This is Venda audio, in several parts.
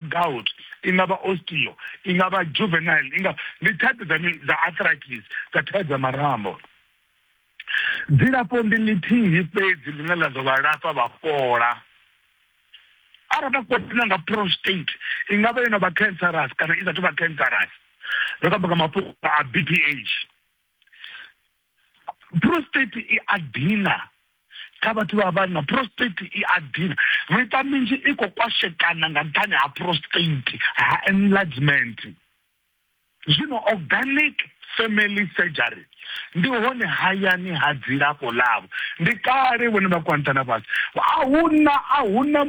gout, i nga vha osteo, i nga vha juvenile, i nga ndi thaidzo dza mini dza arthritis dza thaidzo dza marambo. Dzilafho ndi ḽithihi fhedzi ḽine ḽa ḓo vha lafha vha fhola. Arali vha khou tshila nga prostate, i nga vha yo no vha cancerous kana i sa thu vha cancerous, ri khou amba nga mafhungo a BPH. prostate i a dina kha vhathu vha vhanna prostate i a dina miṱa minzhi i khou kwashekana nga nṱhani ha prostate ha enlargement zwino organic family surgery ndi hone hayani ha dzilafho ḽavho ndi kale vhone vha kwantana fhasi ahuna ahuna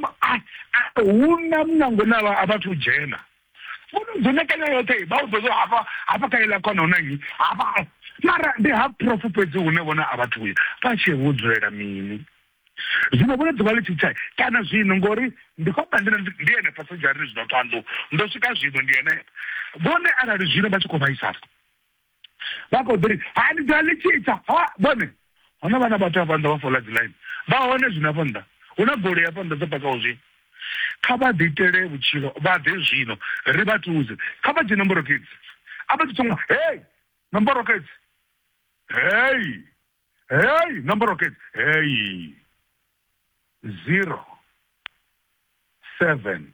ahuna munango na vhathu dzhena dzone kanya yoṱhe vha u ḓozo hafha hafha kha iḽa khona huna nnyi hafha mara ndi ha profu fhedzi hune vhona a vhathu uya vha tshi vho dzulela mini zwino vhone ḓuvha ḽi tshitsha kana zwino ngori ndi khou amba ndina ndi ene pasajari zwino ṱhanḓu ndo swika zwino ndi ene vhone arali zwino vha tshi khou vhaisala vha khou ḓi ri ha ni ḓa ḽi tshi ita ha vhone hona vhana vhathu hafha nnḓa vha fola dzi ḽaini vha hone zwino hafha nnḓa hu na goloi hafha nnḓa dzo pakaho zwi kha vha ḓi itele vhutshilo vha ḓe zwino ri vha thuze kha vha dzhie nomboro kids a vha ḓi thoma hei nomboro kids hei hei nomboro kids hei zero seven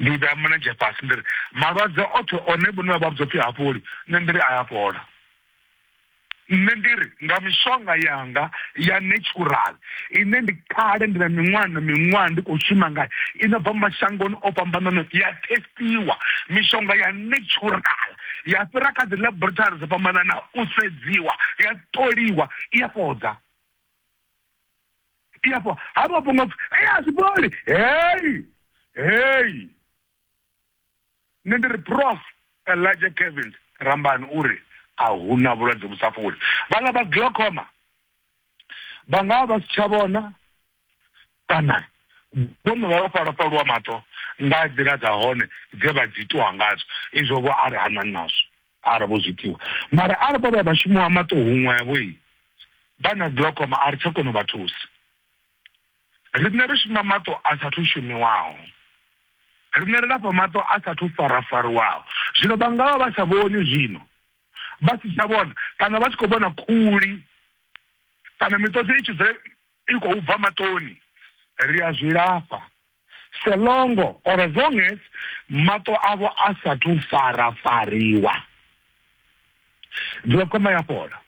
Ndi vhea mulenzhe fhasi ndi ri, Malwadze oṱhe one vhone vha vha vhudza u pfi ha fholi, nṋe ndi ri a ya fhola. Nṋe ndi ri, Nga mishonga yanga ya netshurali, ine ndi kale ndi na miṅwaha na miṅwaha ndi khou shuma ngayo, i no bva mashangoni o fhambananaho, ya thesitiwa, mishonga ya netshurali, ya fhira kha dzilaborithari dzo fhambananaho u sedziwa, ya ṱoliwa, i a fhodza. iyapo hama ponga pfu eyi azviboli heyi heyi ne ndiri prof elijah kevins rambani uri ahuna vhulwadze vhu sa fholi vhanga vha glocoma vhanga vha si tsha vhona Kana vho no vha vha fha lwofha lwa maṱo nga nḓila dza hone dze vha dzi itiwa ngadzo, izwo vho a ri ha na nazwo arali vho zwi itiwa. Mara arali vho vha vha shuma ha maṱo huṅwevho, vha na glaucoma, a ri tsha kona u vha thusa. Riṋe ri shuma maṱo a sa thu shumiwaho. Riṋe ri lafha maṱo a sa thu farafariwaho. Zwino vha nga vha vha sa vhoni zwino, vha si tsha vhona, kana vha tshi khou vhona khuli, kana miṱodzi i tshi dzula i khou bva maṱoni ri a zwi lafha so longo or as long as maṱo avho a sathu farafariwa glaucoma ya fhola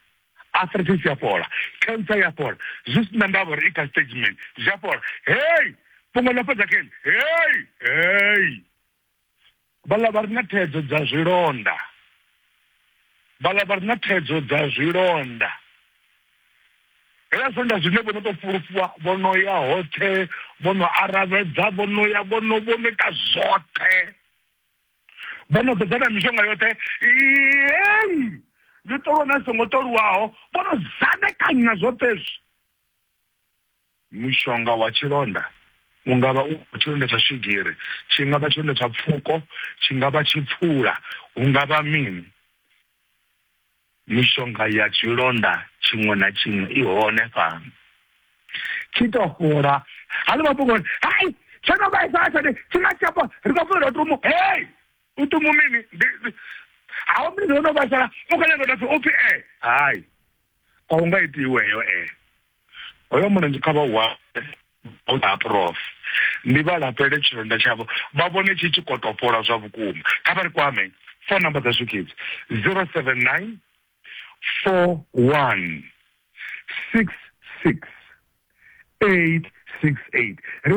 arthritis ya fhola cancer ya fhola zwi si na ndavha uri i kha stage mini zwi a fhola hei fhungo ḽa fhedza keni hei hei vhala vha re na thaidzo dza zwilonda vhala vha re na thaidzo dza zwilonda hela zwilonda zwine vho no tou fulufhiwa vho no ya hoṱhe vho no aravhedza vho no ya vho no vho no ita zwoṱhe vho no ḓodza na mishonga yoṱhe ei ndi ṱolwa na songo ṱolwaho vho no zanekanya zwoṱhe zwi Mushonga wa tshilonda u nga vha u tshilonda tsha swigiri, tshi nga vha tshilonda tsha pfuko, tshi nga vha tshipfula, hu nga vha mini. Mishonga ya tshilonda tshiṅwe na tshiṅwe i hone fhano. Tshi tou fhola, ha ḽi mafhungo uri, Hai! Tsho no vhaisala tshone, tshi nga si tsha fhola, ri khou funela u tumu. Hei! U tumu mini? Ndi, ndi, ha u mini? Ho no vhaisala, u khou nyaga u tou pfi, u pfi ee. Hai! a hu nga iti iweyo e hoyo mulenzhe kha vha wa ha prof ndi vha lapele tshilonda tshavho vha vhone tshi tshi khou topola zwa vhukuma kha vha ri kwame phone number dza swikidzi 079 41 66 868 ri